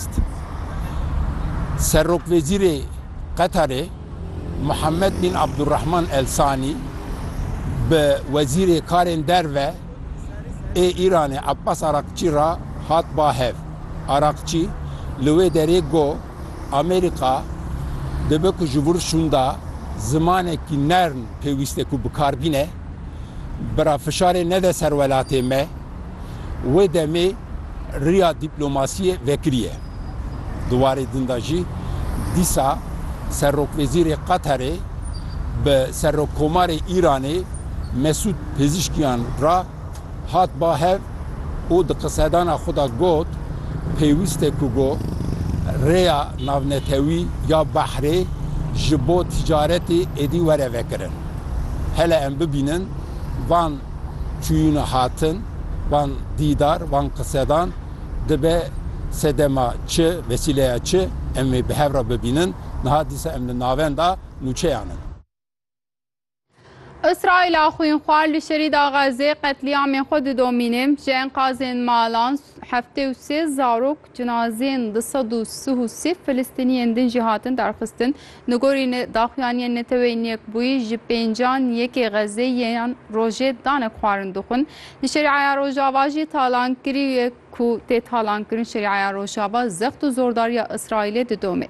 xwest. Serokwezîrê Qetarê Muhammed bin Abdulrahman Al Thani bi Wezîrê Karên Derve ê Îranê Abbas Araghçî re hat ba hev. Araghçî li wê derê got, Amerîka dibe ku ji vir şûnda zimanekî nerm pêwîste ku bikarbîne, bira fişarê nede ser welatê me. Wê demê riya dîplomasiyê vekiriye. Di warê din de jî dîsa serokwezîrê Qatarê bi serokkomarê Îranê Mesûd Pezîşkiyan re hat ba hev û di qisedana xwe de got, Pêwîst e ku rêya navnetewî ya behrê ji bo ticaretê êdî were vekirin. Hele em bibînin van çûyîna hatin van dîdar, van qisedan dibe sedema çi, vesîleya çi em ê bi hev re bibînin. Niha dîsa em li navenda nûçeyan in. Îsraîla xwînxwar li Şerîda Xezzê qetlîamên xwe didomîne. Ji enqazên malan heftê û sê zarok Cinazeyên du sed û sih û sih Filistîniyên din jî hatin derxistin. Li gorî daxuyaniyên Neteweyên Yekbûyî ji pêncan yekê Xezeyiyan rojê danek xwarin dixwin. Li Şerîaya Rojava jî talankirî ye ku tê talankirin Şerîaya Rojava zext û zordariya Îsraîlê didomê.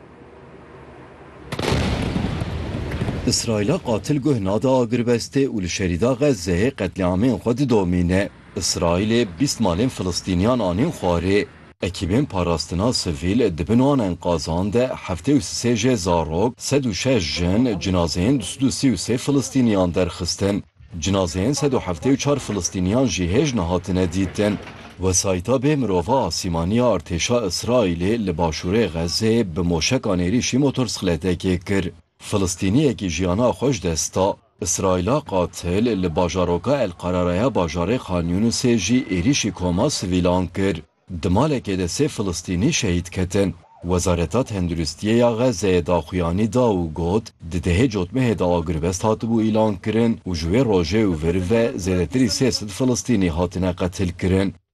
Îsraîla qatil guh nade agirbestê û li Şerîda Xezeyê qetlîamên xwe didomîne. Îsraîlê bîst malên Filistîniyan anîn xwarê, ekîbên parastina sivîl di bin wan enkazan de heftê û sisê jê zarok, sed û şeş jin, cinazeyên du sed û sî û sê Filistîniyan derxistin. Cinazeyên sed û heftê û çar Filistîniyan jî hêj nehatine dîtin. Wesayîta bê mirova asîmanî ya artêşa Îsraîlê li başûrê Xezzê bi moşekan êrîşî motorsixletekê kir. Filistîniyekî jiyana xwe ji dest da. Îsraîla qatil li bajaroka El Qarara ya bajarê Khan Yûnisê jî êrîşî koma sivîlan kir. Di malekê de sê Filistînî şehîd ketin. Wezareta Tenduristiyê ya Xezzeyê daxuyanî da û got, di dehê cotmehê de agirvest hatibû îlankirin û ji wê rojê û vir ve zêdetirî sê sed Filistînî hatine qetilkirin.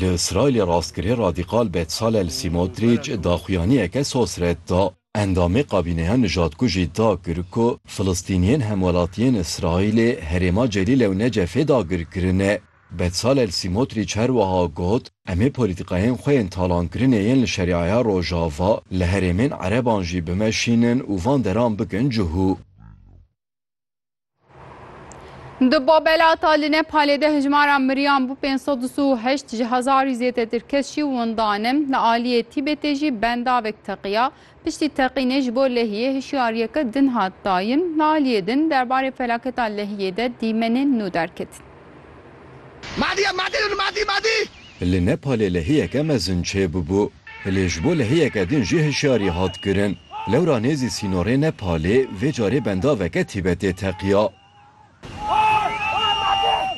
Li Îsraîlê rastgirê radîkal Betzalel Sîmotrîç daxuyaniyeke sos red da. Endamê kabîneya nijadkujî da kir ku Filistîniyên hemwelatiyên Îsraîlê herêma Celîle û Necefê dagir kirine. Betzalel Sîmotrîç her wiha got, Em ê polîtîkayên xwe yên talankirinê yên li Şerîaya Rojava, li herêmên ereban jî bimeşînin û van deran bikin cihû. Di babelata li Nepalê de hijmara miriyan bû 528 ji hezarî zêdetir kes jî windan in. Li aliyê Tîbetê jî bendavek teqiya. Piştî teqînê ji bo lehiyê hişyariyeke din hat dayin. Li aliyê din derbarê felaketa lehiyê de dîmenên nû derketin. Li Nepalê lehiyeke mezin çêbûbû, lê ji bo lehiyeke din jî hişyarî hat kirin. Lewra nêzî sînorê Nepalê vê carê bendaveke Tîbetê teqiya.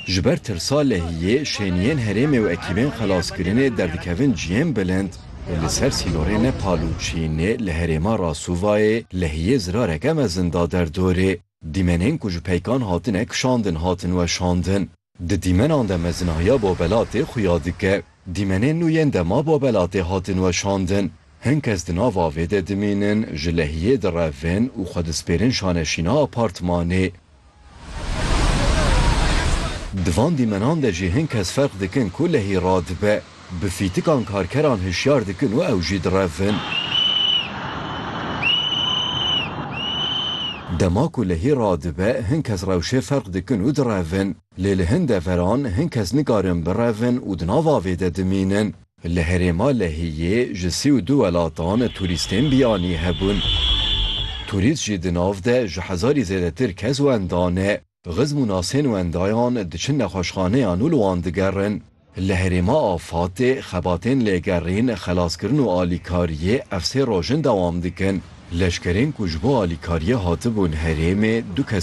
Ji ber tirsa lehiyê, şêniyên herêmê û ekîbên xelaskirinê derdikevin ciyên bilind. Li ser sînorê Nepal û Çînê li herêma Rasûvayê lehiyê zirareke mezin da derdorê. Dîmenên ku ji peykan hatine kişandin hatin weşandin. Di dîmenan de mezinahiya Babelatê xuya dike. Dîmenên nû yên dema Babelatê hatin weşandin. Hin kes di nav avê de dimînin, ji lehiyê direvin û xwe dispêrin şaneşîna apartmanê. Di van dîmenan de jî hin kes ferq dikin ku lehî radibe. Bi fîtikan karkeran hişyar dikin û ew jî direvin. Dema ku lehî radibe hin kes rewşê ferq dikin û direvin. Lê li hin deveran hin kes nikarin birevin û di nav avê de dimînin. Li herêma Lehiyê ji sî û du welatan turîstên biyanî hebûn. Turîst jî di nav de ji hezarî zêdetir kes wenda ne. Xizm û nasên wendayan diçin nexweşxaneyan û li wan digerin. Li herêma afatê xebatên lêgerîn, xelaskirin û alîkariyê ev sê roj in dewam dikin. Leşkerên ku ji bo alîkariyê hatibûn herêmê du kes,